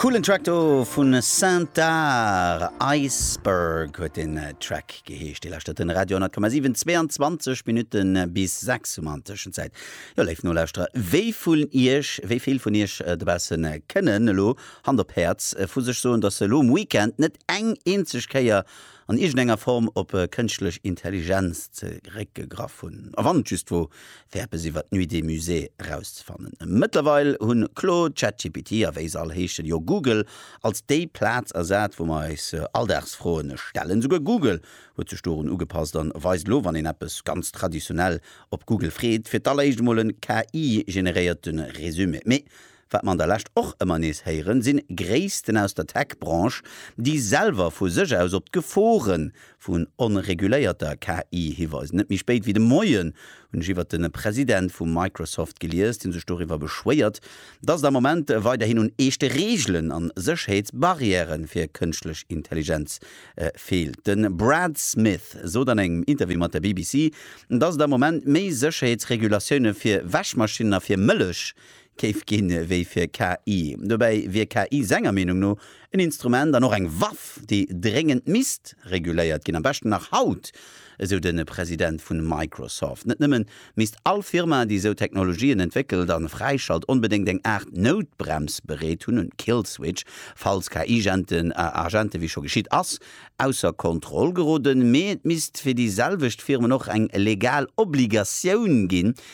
Coolen Track do vun Saintar, Iceberg huet den Track geheescht. Dir lauschtert den Radio 10,7, 22 Minutten bis 6 Uhr an Tëschenzäit. Jo léif Nolauschterer, wéi vun Iech, wéi vill vun Iech dobaussen kënnen elo, Hand op Häerz, vu sech soen, datt se elo um Weekend net eng eenzeg Kéier an iergendenger Form op kënschtlech Intelligenz zeréckgegraff hunn, a wann et just wor, fir eppes iwwer d'Nuit des Musées erauszefannen. Mëttlerweil hunn Claude, ChatGPT a wéi se all heeschen, jo Google als déi Plaz ersat, wou mer eis Alldagsfroen stellen. Souguer Google huet sech dorun ugepasst a weist elo, wann een eppes ganz traditionell op Google freet, fir d'alleréischt emol e KI-generéierte Resumé. Mee Wat mer an der Lescht och ëmmer nees héieren, sinn Gréissten aus der Tech-Branche, déi selwer vu sech aus op d'Geforen vun onreguléierter KI hiweisen. Net méi spéit wéi de Moien hunn ech iwwert den President vu Microsoft gelies, deen sech doriwwer beschwéiert, dass et am Moment weiderhin un eeschte Reegelen an Sécherheetsbarrièren fir Kënschtlech Intelligenz feelt. Den Brad Smith sot an engem Interview mat der BBC, dass et am Moment méi Sécherheetsregulatiounen fir Wäschmaschinen a fir Mëllech Géif ginn wéi fir KI. Dobäi wier KI senger Meenung no en Instrument an och eng Waff, déi dréngend misst reguléiert ginn, am beschten nach haut, esou de President vu Microsoft. Net nëmmen misst all Firma, déi esou Technologien entwéckelt an fräischalt, onbedéngt eng Aart Noutbrems bereet hunn, en Kill Switch, falls KI-Agenten Agenten, wéi scho geschitt ass, ausser Kontroll geroden, mee et misst fir déi selwecht Firmen och eng legal Obligatioun ginn,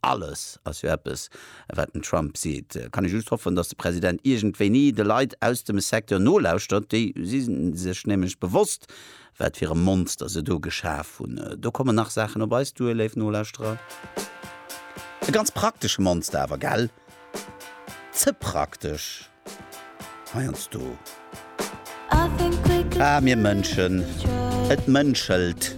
Alles ass jo eppes, wat den Trump seet. Kann ee just hoffen, datt de President iergendwéini de Leit aus dem Secteur nolauschtert. Déi si sech nämlech bewosst, wat fir e Monster se do geschaf hunn. Do kommen nach Saachen op eis duer, léif Nolauschterer. E ganz praktesche Monster awer, gell? Ze praktesch heiansdo. Ah, mir Mënschen, et mënschelt.